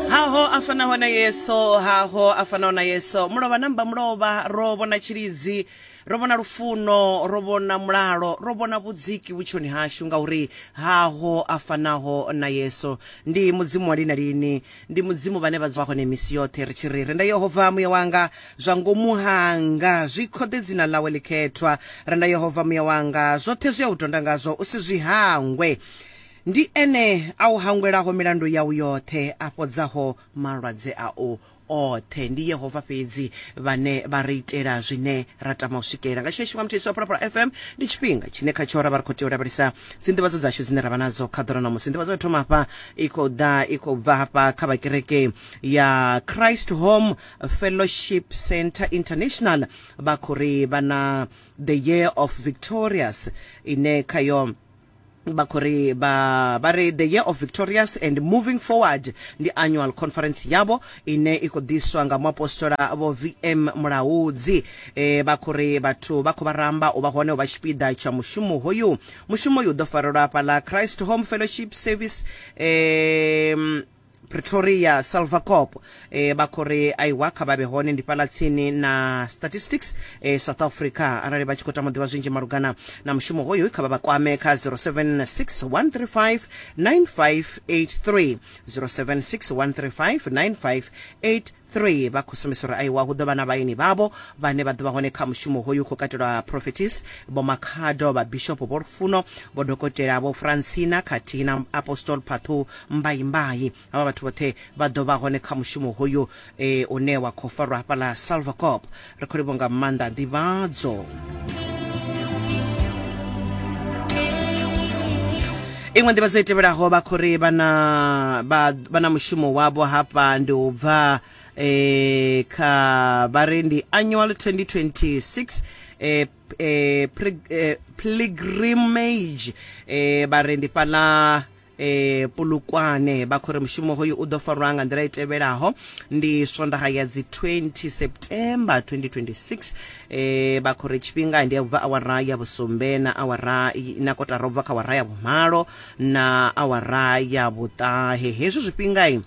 haho a fanaho na yeso haho a fanaho na yeso mulovha namba mulovha ro vhona tshilidzi ro vhona lufuno ro vhona mulalo ro vhona vhudziki vhutshiloni hashu ngauri haho a fanaho na yeso ndi mudzimu wa lina lini ndi mudzimu vhane vha dzwa hone misi yoṱhe ri tshi ri renda yehova muya wanga zwa ngomu hanga zwi khode dzina ḽawe ḽikhethwa renda yehova muya wanga zwoṱhe zwi a u tonda ngazwo u si zwi hangwe Ndi Ene a u hangwelaho milandu yau yoṱhe, a fhodzaho malwadze au oṱhe. Ndi Yehova fhedzi vhane vha ri itela zwine ra tama u swikelela. Nga tshiṅwe tshifhinga, muthetshelesi wa Phalaphala FM ndi tshifhinga tshine khatsho ra vha ri khou tea u lavhelesa dzinḓivhadzo dzashu dzine ra vha nadzo kha ḓora ṋamusi. Nḓivhadzo ya thoma hafha i khou ḓa i khou bva hafha kha vha kereke ya Christ Home Fellowship Centre International, vha khou ri vha na The Year of Victorious ine khayo vha khou ri vha ri the year of victorious and moving forward ndi annual conference yavho ine i khou ḓiswa nga muapostola vho vm mulaudzi e, vha khou ri vhathu vha khou vha ramba u vha hone u vha tshipiḓa tsha mushumo hoyu mushumo uyu u ḓo farelwa hafhaḽa christ home fellowship service um Pretoria, Salvacop eh, vha khou ri aiwa kha vha vhe hone ndi fhaḽa tsini na statistics eh, south africa arali vha tshi khou tama u ḓivha zwinzhi malugana na mushumo hoyu kha vha vha kwame kha 0761359583 0761359583 3 vha khou sumbisa uri aiwa hu ḓo vha na vhaeni vhavho vhane vha ḓo vha hone kha mushumo hoyu u khou katelwa prophetis vho makhado vha bishopo vho lufuno vho dokotela vho francina khathihi na apostol phathu mbaimbai havha vhathu vhoṱhe vha ḓo vha hone kha mushumo hoyu e, une wa khou farwa hafhaḽa salvacop Ri khou livho nga maanḓa nḓivhadzo. iṅwe nḓivhadzo i tevhelaho vha khou ri vha na mushumo wavho hafha ndi u bva eh, kha vha ri ndi annual 2026 eh, eh, eh, pilgrimage eh, vha ri ndi fhaḽa e, Polokwane vha khou ri mushumo hoyu u ḓo farwa nga nḓila i tevhelaho ndi swondaha ya dzi 20 september 2026 e, vha khou ri tshifhinga ndi ya ubva awara ya vhusumbe na awara na kotara ubva kha awara ya vhumalo na awara ya vhuṱahe hezwi zwifhingai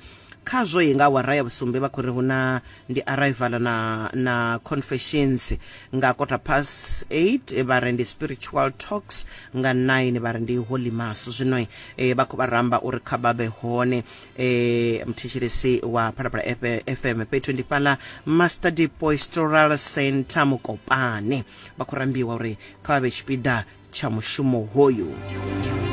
khazwo i nga awara ya vhusumbe vha khou ri hu na ndi Arrival na na Confessions nga quarter past 8 eh, vha ri ndi Spiritual Talks nga 9 vha ri ndi Holy Mass zwino eh, vha khou vha ramba uri kha vha vhe hone eh, mthetshelesi wa Phalaphala FM fhethu ndi fhala Master Depoistoral Center Mukopane vha khou rambiwa uri kha vha vhe tshipiḓa tsha mushumo hoyu